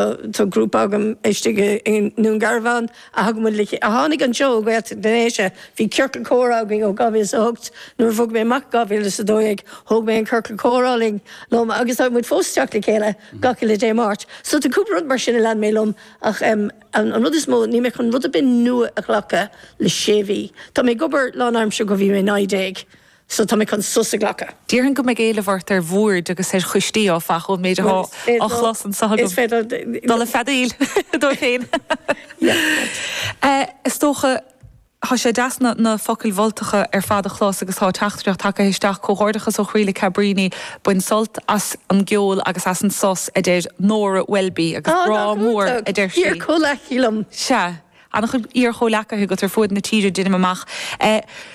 Tá grúpa agam istigh i nDún Garbhán a thugaimid le chéile. Tháinig an seó ó Ghaeltacht na nDéise. Bhí ciorcal comhrá againn ó 2008. Nuair a bhog mé amach i 2012 thóg mé an ciorcal comhrá liom agus tagann muid fós isteach le chéile gach uile Dé Máirt. So tá cúpla rud mar sin a lean mé liom ach an rud is mó, níl mé chun rud ar bith nua a ghlacadh le sé mhí. Tá mé ag obair lánaimseartha ó bhí mé 19. so tá mé chun sos a ghlacadh. Déarfainn go mbeidh éileamh ort ar bhoird agus ar choistí áfach, ón méid atá á chlos anseo agam. Is féidir dul ag feadaíl, a dúirt féin. Is dócha, tá sé deas na focail mholtacha ar fad a chlos agus tá teachtaireacht tagtha isteach, Comhghairdeachas ó chroí le Cabríní, bain sult as an gceol agus as an sos, a deir Nora Welby, agus grá mór, a deir sí. Ó, nach iontach! Deir comhleacaí liom. Sea. An-chuid iar-chomhleacaithe agat ar fuaid na tíre, déanaim amach.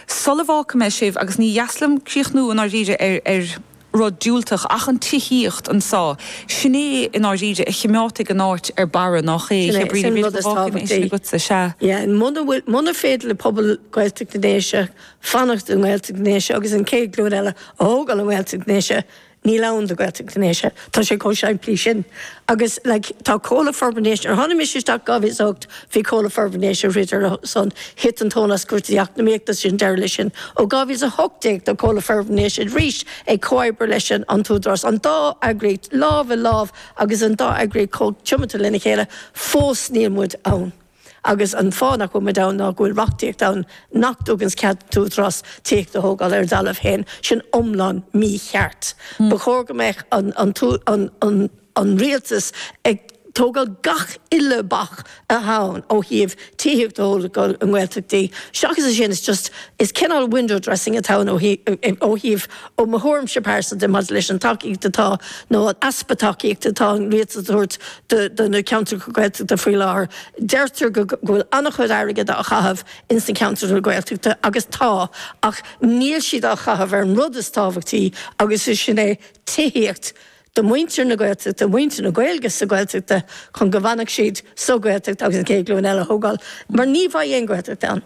Sula bhfágfaidh mé sibh, agus ní deas liom críochnú i ndáiríre ar rud diúltach ach an tithíocht anso, sin é i ndáiríre a chimeádfaidh an áit ar barra, nach ea? Sin é, is é an rud is tábhachtaí. Muna féidir le pobal Gaeltacht na nDéise fanacht i nGaeltacht na nDéise agus an chéad ghlúin eile a thógáil i nGaeltacht na nDéise, Níl ann do Gaeltacht na nDéise, tá sé chomh simplí sin. Agus like tá Comhlucht Forbartha na nDéise, nuair a tháinig mise isteach in 2008 bhí Comhlucht Forbartha na nDéise ag throid ar a son, thit an tóin as cúrsaí eacnamaíochta, sin deireadh leis sin. Ó 2018 tá Comhlucht Forbartha na nDéise arís ag comhoibriú leis an an tÚdarás, an dá eagraíocht lámh i lámh agus an dá eagraíocht chomh tiomanta lena chéile, fós níl muid ann. Agus an fáth nach bhfuil muid ann ná go bhfuil reachtaíocht ann nach dtuganns cead d'Údarás tithíocht a thógáil ar a dtalamh féin. Sin iomlán mícheart. Ba chóir go mbeadh an rialtas ag tógáil gach uile bac athá ann ó thaobh tithíocht a thógáil i nGaeltachtaí. Seachas a sin is just, is cineál window dressing atá ann ó thaobh, ó mo thuairimse pearsanta maidir leis an tacaíocht atá, nó an easpa tacaíochta atá an rialtas a thabhairt do na ceantracha Gaeltachta faoi láthair. Deirtear go go bhfuil an-chuid airgid á chaitheamh ins na ceantracha Gaeltachta agus tá, ach níl siad á chaitheamh ar an rud is tábhachtaí agus is sin é tithíocht do mhuintir na Gaeltachta, mhuintir na Gaeilge sa Ghaeltacht chun go bhfanfadh siad sa Ghaeltacht agus an Chéad Ghlúin Eile a thógáil mar ní bheidh aon Ghaeltacht ann.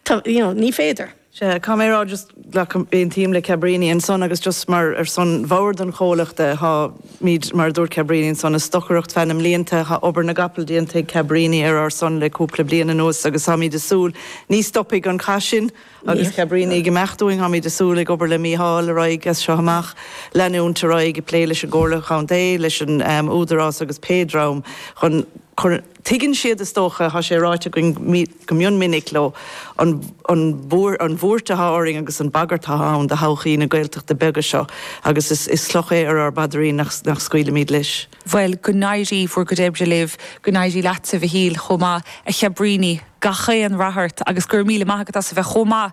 tá, you know, ní féidir. Sea, caithfidh mé a rá, just, glacaim, aontaím le Cabrini ansan agus just mar, ar son bhord an chomhluchta, tháimíd, mar a dúirt Cabrini ansan, ag stocaireacht feadh na mblianta, thá obair na gcapall déanta ag Cabrini ar ár son le cúpla bliain anuas agus táimíd a' súil, ní stopfaidh an cath sin agus Cabrini ag imeacht uainn, táimíd a' súil, ag obair le Mícheál ar aghaidh as seo amach, leanúint ar aghaidh ag plé leis an gComhairle Chontae, leis an, em, Údarás agus pé dream chun cur, tuigeann siad is dócha, thá sé ráite againn go, go mion minic leo an bhuairt atá orainn agus an bhagairt atá ann do thodhchaí na nGaeltachtaí beaga seo agus is cloch é ar ár bpaidrín nach scaoilimid leis. Bhuel, go n-éirí bhur gcuid oibre libh, go n-éirí leat a Mhichíl chomh maith, a Chabríní, gach aon rath ort agus go raibh míle maith agat as a bheith chomh maith